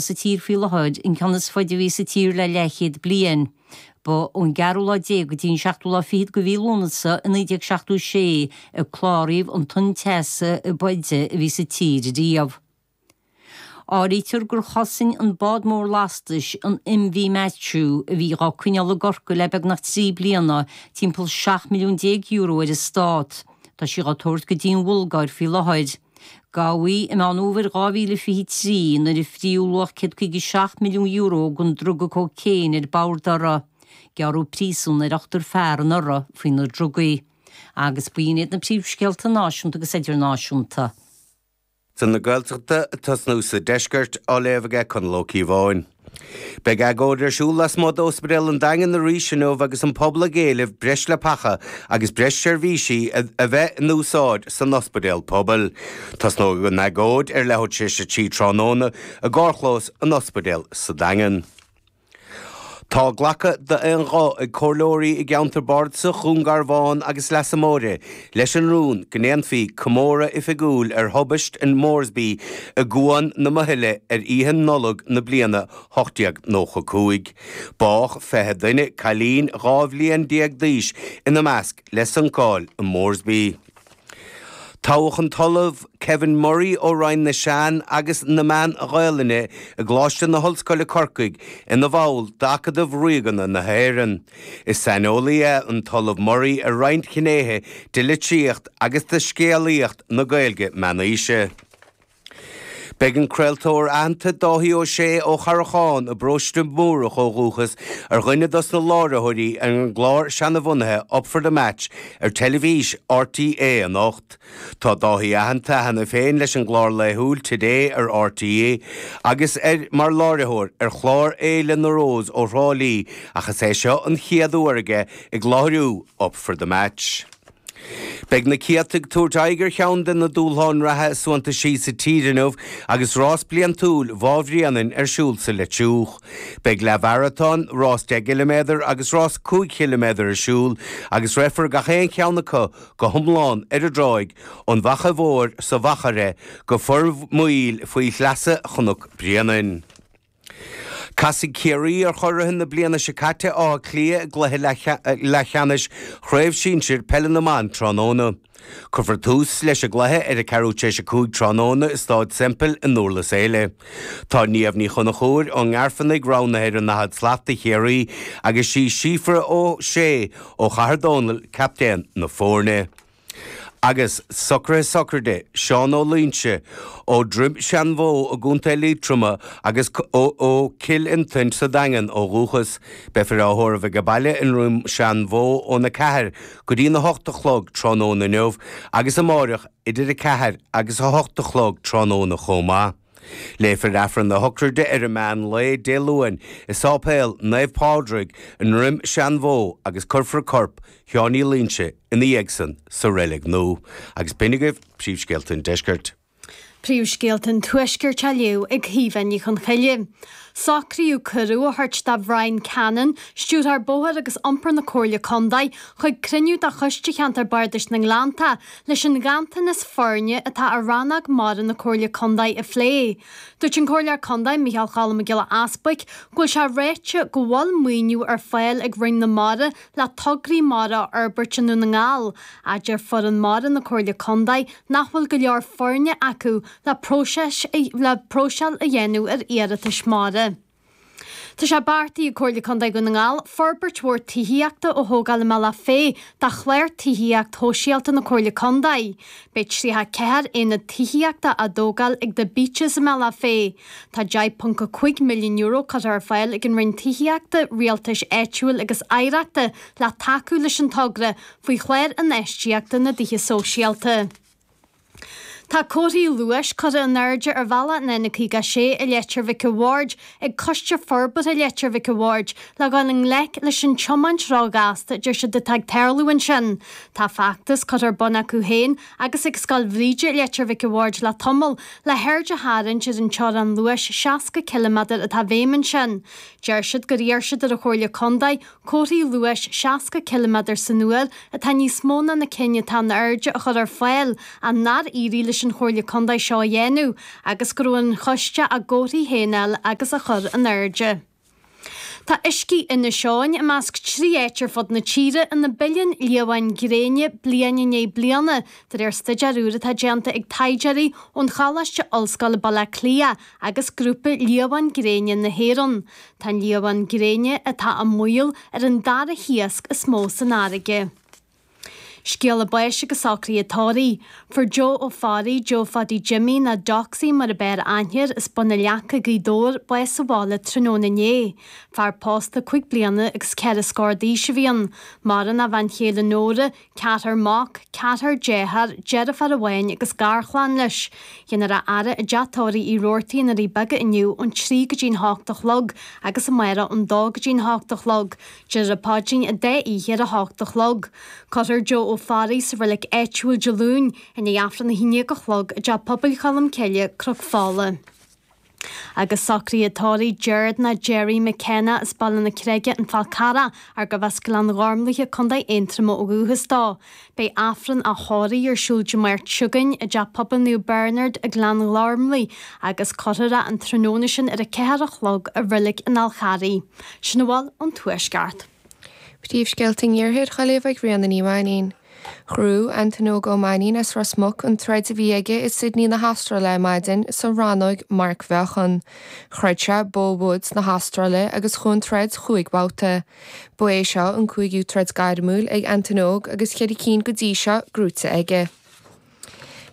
sa tír faoi láthair, an ceann is faide a bhí sa tír le leathchéad bliain. Ba ón gceathrú lá déag go dtí an seachtú lá fichead de mhí Lúnasa i 1976 a cláraíodh an tonn teasa ab fhaide a bhí sa tír riamh. Áirítear gur chosain an bád mór lastais, an MV Matthew, a bhí á coinneáil i gCorcaigh le beagnach trí bliana, timpeall seacht milliún déag euro ar an Stát. Tá sí á tabhairt go dtí an Bhulgáir faoi láthair. Gabhadh í i Meán Fhómhair 2023, nuair a frítheadh luach €157 milliún den druga cócaon ar bord uirthi, gearradh príosún ar ochtar fear anuraidh faoi na drugaí, agus b'in iad na príomhscéalta náisiúnta agus idirnáisiúnta. Scéala na Gaeltachta ag tosnú sa deisceart á léamh aige Conall Ó Cíobháin. Beidh agóid ar siúl lasmuigh d'Ospidéal an Daingin arís inniu agus an pobal ag éileamh breis leapacha agus breis seirbhísí a bheith in úsáid san ospidéal pobail. Tosnóidh an agóid ar leathuair tar éis a trí tráthnóna i gcarrchlós an ospidéil sa Daingean. Tá glactha d'aon ghuth ag comhairleoirí i gceantar bardasach Dhún Garbhán agus Leasa Móire leis an rún go ndéanfaí comóradh oifigiúil ar thubaist an Moresby i gCuan na Muhile ar Oíche Nollag na bliana 1895. Bádh fiche duine, cailín dhá bhliain déag d'aois ina measc, le suncáil an Moresby. Toghadh an tOllamh Kevin Murray ó Roinn na Sean agus na Meán-Ghaelainne i gColáiste na hOllscoile Corcaigh ina bhall d'Acadamh Ríoga na hÉireann. Is saineolaí é an tOllamh Murray ar roinnt ghnéithe de litríocht agus de scéalaíocht na Gaeilge meánaoise. Beidh an craoltóir aitheanta Dáithí Ó Sé ó Charrachán i bparóiste Múrach ó dhúchas ar dhuine dos na láithreoirí ar an gclár seanabhunaithe Up for the Match ar teilifís RTÉ anocht. Tá Dáithí aitheanta cheana féin leis an gclár laethúil Today ar RTÉ agus ar mar láithreoir ar chlár Fhéile na Rós ó Thrá Lí ach is é seo an chéad uair aige ag láithriú Up for the Match. Beidh na céadta ag tabhairt aghaidh ar cheann de na dúshláin reatha is suantaisí sa tír inniu agus rás bliantúil Bhá Bhréanainn ar siúl sa Leitriúch. Beidh leathmharatón, rás deich gciliméadar agus rás cúig chiliméadar ar siúl agus rithfear gach aon cheann acu go hiomlán ar an dtráigh ón bhFaiche Mhóir sa Mhachaire go Formaoil faoi shleasa Chnoc Bréanainn. Casfaidh Ciarraí ar churaithe na bliana seo caite, Áth Cliath, i gcluiche leathcheannais Chraobh Shinsir Peile na mBan tráthnóna. Cuirfear tús leis an gcluiche ar a ceathrú tar éis a cúig tráthnóna i Stáid Semple i nDúrlas Éile. Tá Niamh Ní Chonchúir ón nGairfeanaigh roghnaithe ar an 40 slat do Chiarraí agus sí Síofra Ó Sé ó Chathair Dónall captaen na foirne. Agus socruithe sochraide Seán Ó Loinsigh ó Dhroim Seanbhó i gContae Liatroma agus ó Chill Fhionntain sa Daingean ó dhúchas, beifear á thórramh aige baile i nDroim Seanbhó óna 4 go dtí na 8 a chlog tráthnóna inniu agus amáireach. idir 4 agus 8 a chlog tráthnóna chomh maith. Léifear Aifreann a shochraide ar an meán lae Dé Luain i Sáipéal Naomh Pádraig i nDroim Seanbhó agus cuirfear corp Sheáin Uí Loinsigh ina dhiaidh san sa reilig nua. Agus b'in agaibh príomhscéalta an deiscirt. Príomhscéalta an tuaiscirt á léamh ag Caoimhe Ní Chonchoille. Socraíodh cuireadh a thabhairt do Bhrian Cannon, Stiúrthóir Bóthair agus Iompair na Comhairle Contae, chuig cruinniú de Choiste Cheantar Bardais na nGleannta Leis an nganntanas foirne atá ar rannóg mara na Comhairle Contae a phlé, dúirt an Comhairleoir Contae Micheál Choilm Mac Giolla Easbuig go bhfuil sé ráite go bhfuil maoiniú ar fáil ag Roinn na Mara le tograí mara a fhorbairt i nDún na nGall, ach deir foireann mara na Comhairle Contae nach bhfuil go leor foirne acu le próiseáil a dhéanamh ar iarratais mara. Tá sé beartaithe ag Comhairle Contae Dhún na nGall forbairt mhór tithíochta a thógáil i mBealach Féich do Chlár Tithíocht Shóisialta na Comhairle Contae. Beidh 34 aonad tithíochta á dtógáil ag The Beeches i mBealach Féich. Tá €10.5 milliún curtha ar fáil ag an Roinn Tithíochta, Rialtais Áitiúil agus Oidhreachta le tacú leis an togra faoi Chlár Infheistíochta na dTithe Sóisialta. Tá comharthaí luais curtha in airde ar bhealach an N56 i Leitir Mhic a' Bhaird ag Coiste Forbartha Leitir Mhic a' Bhaird le dhul i ngleic leis an tiomáint róghasta a deir siad atá ag tarlú ansin. Tá feachtas curtha ar bun acu féin agus ag Scoil Bhríde i Leitir Mhic a' Bhaird le tamall le haird a tharraingt ar an teorainn luais 60 ciliméadar atá i bhfeidhm ansin. Deir siad gur iarr siad ar an Chomhairle Contae Comharthaí luais 60 ciliméadar san uair, atá níos mó ná na cinn atá in airde, a chur ar fáil, ach nár éirigh leis an Chomhairle Contae seo a dhéanamh, agus go raibh ar an Choiste a gcomharthaí féin a fháil agus a chur in airde. Tá uiscí Inis Eoghain i measc trí áit ar fud na tíre ina bpilleann liamháin gréine bliain i ndiaidh bliana, de réir staidéar úr atá déanta ag taighdeoirí ón Choláiste Ollscoile Baile Átha Cliath agus Grúpa Liamhán Gréine na hÉireann. Tá an liamhán gréine atá i mbaol ar an dara hiasc is mó san fharraige. Scéala báis agus socruithe tórraimh. Fuair Joe Ó Fearraigh, Joe Phaidí Jimmy, nó Doxy mar ab fhearr aithne air as Bun na Leaca, Gaoth Dobhair, bás sa bhaile tráthnóna inné. Fear pósta cúig bliana agus ceithre scór d'aois a bhí ann. Maireann a bhean chéile Nóra, ceathrar mac, ceathrar deartháir, deirfiúr amháin agus garchlann leis. Déanfar a fhaire i dteach tórraimh Uí Robhartaigh i nDoirí Beaga inniu ón trí go dtí'n hocht a chlog agus amárach ón dó go dtí'n hocht a chlog, déarfar an Paidrín an dá oíche ar a hocht a chlog. Cuirfear Joe Ó Fearraigh sa reilig áitiúil Dé Luain i ndiaidh Aifreann a haon dhéag a chlog i dTeach Pobail Cholm Cille, Cnoc Fola. Agus socruithe tórraimh Gerard nó Gerry McKenna as Baile na Creige, An Fál Carrach, arbh as Gleann Ghormlaithe, Co Aontroma ó dhúchas dó. Beidh Aifreann a thórraimh ar siúl Dé Máirt seo chugainn i dTeach Pobail Naomh Bernard i nGleann Ghormlaithe agus cuirfear é an tráthnóna sin ar a ceathair a chlog i Reilig an Fháil Charraigh. Sin a bhfuil ón Tuaisceart. Príomhscéalta an iarthair dhá léamh ag Ríona Ní Mhainín. Ghnóthaigh Antaine Óg Ó Mainín as Ros Muc, an troid a bhí aige i Sydney na hAstráile ar maidin, sa rannóig marcmheáchan. Throid sé Beau Woods na hAstráile agus chuaigh an troid chúig bhabhta. Ba é seo an cúigiú troid gairmiúil ag Antaine Óg agus ceithre cinn go dtí seo gnóite aige.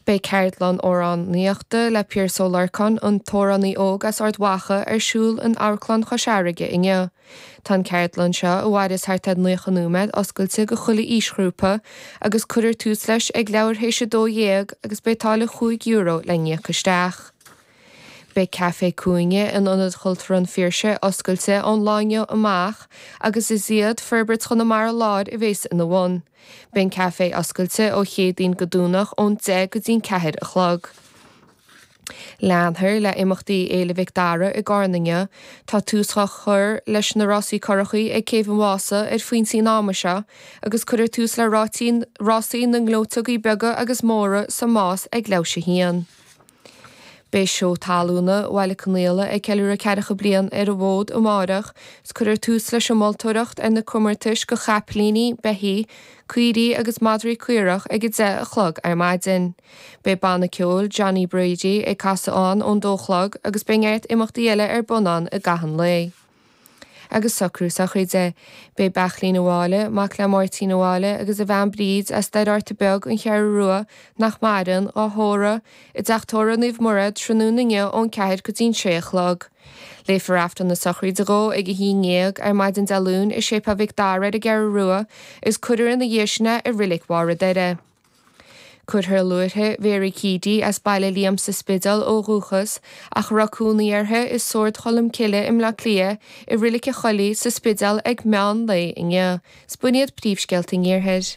Beidh ceardlann amhránaíochta le Piaras Ó Lorcáin, an t-amhránaí óg as Ard Mhacha, ar siúl in Amharclann Chois Fharraige inniu. Tá an ceardlann seo, a mhaireas thart ar naocha nóiméad, oscailte go chuile aoisghrúpa agus cuirfear tús leis ag leathuair théis a dó dhéag agus beidh táille chúig euro le n-íoc isteach. Beidh Café Cúinne in Ionad Chultúrtha an Phiarsaigh oscailte ón lá inniu amach agus is iad Forbairt Chonamara Láir a bhéas ina bhun. Beidh an caifé oscailte ó Chéadaoin go Domhnach ón deich go dtí'n ceathair a chlog. Leanfar le imeachtaí Fhéile Mhic Dara i gCarna inniu. Tá tús á chur leis na rásaí currachaí ag Céibh an Mhása ar phointí an ama seo agus cuirfear tús le rásaí na ngleoiteogaí beaga agus móra sa Más ag leathuair théis a haon. Beidh Seó Talúna Bhaile Conaola ag ceiliúradh ceathracha bliain ar an bhfód amárach is cuirfear tús leis an moltóireacht ar na comórtais go chapaillíní, beithígh, caoirigh agus madraí caorach ag a deich a chlog ar maidin. Beidh banna ceoil Johnny Brady ag casadh ann ón dó chlog agus beidh neart imeachtaí eile ar bun ann i gcaitheamh an lae. agus socrú sochraide. Beidh Beairtlín Ó Máille, mac le Máirtín Ó Máille agus a bhean Bríd, as Doire Fhatharta Beag, an Cheathrú Rua, nach maireann, dhá thórramh, i dteach Tórraimh Naomh Muire, tráthnóna inniu ón ceathair go dtí'n sé a chlog. Léifear Aifreann na sochraide dhó ag a haon ndéag, ar maidin Dé Luain, i Séipéal Mhic Dara ar an gCeathrú Rua, is cuirfear ina dhiaidh sin é i Reilig Bharr an Doire. Cuirfear luaithre Vera Keady as Baile Liam sa Spidéal ó dhúchas, ach a raibh cónaí uirthi i Sórd Cholm Cille i mBleá Cliath, i Reilig an Choilligh, sa Spidéal ag meán lae inniu. Is b'in iad príomhscéalta an iarthair.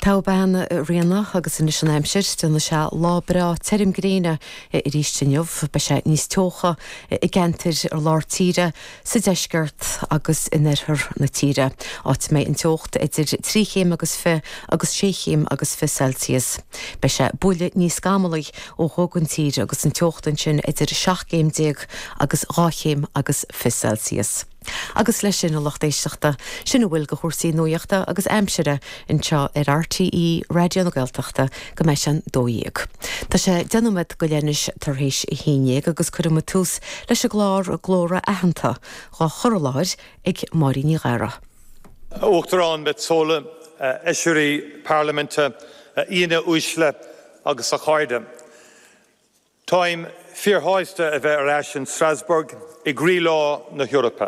Tá a bean rianach agus anois an aimsir déanfaidh sé lá breá tirim gréine arís inniu. Beidh sé níos teocha i gceantair ar lár tíre sa deisceart agus in oirthear na tíre, áit a mbeidh an teocht idir trí chéim agus fiche agus sé chéim agus fiche Celsius. Beidh sé buille níos scamalaí ó thuaidh an tír agus an teocht ansin idir seacht gcéim déag agus dhá chéim agus fiche Celsius. Agus leis sin a lucht éisteachta, sin a bhfuil de chúrsaí nuaíochta agus aimsire, anseo ar RTÉ Raidió na Gaeltachta go mbeidh sé an dó dhéag. Tá sé deich nóiméad go leith anois tar éis a haon dhéag agus cuirfimid tús leis an gclár Glórtha Aitheanta, dhá chur i láthair ag Máirín Ní Ghadhra. Uachtarán Metsola, a Fheisirí Parlaiminte, a aíonna uaisle agus a chairde. Táim fíorshásta a bheith ar ais in Strasbourg i gcroílár na hEorpa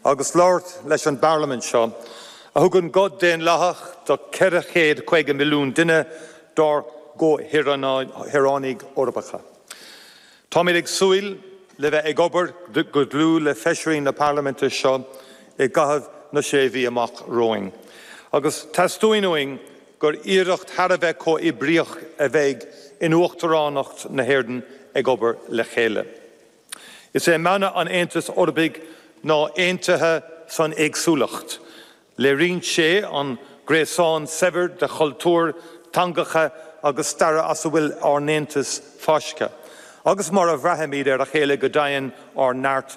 agus labhairt leis an bParlaimint seo a thugann guth daonlathach do 450 milliún duine dár gcomhshaoránaigh Eorpacha. Táimid ag súil le bheith ag obair go dlúth le Feisirí na Parlaiminte seo i gcaitheamh na sé mhí amach romhainn agus teastaíonn uainn gur iarracht thar a bheith comhoibríoch a bheidh in Uachtaránacht na hÉireann ag obair le chéile. Is é mana an Aontais Eorpaigh ná aontaithe san éagsúlacht. Léiríonn sé an gréasán saibhir de chultúir, teangacha agus staire as a bhfuil ár n-aontas fáiscthe, agus mar a bhraithimid ar a chéile go domhain ár neart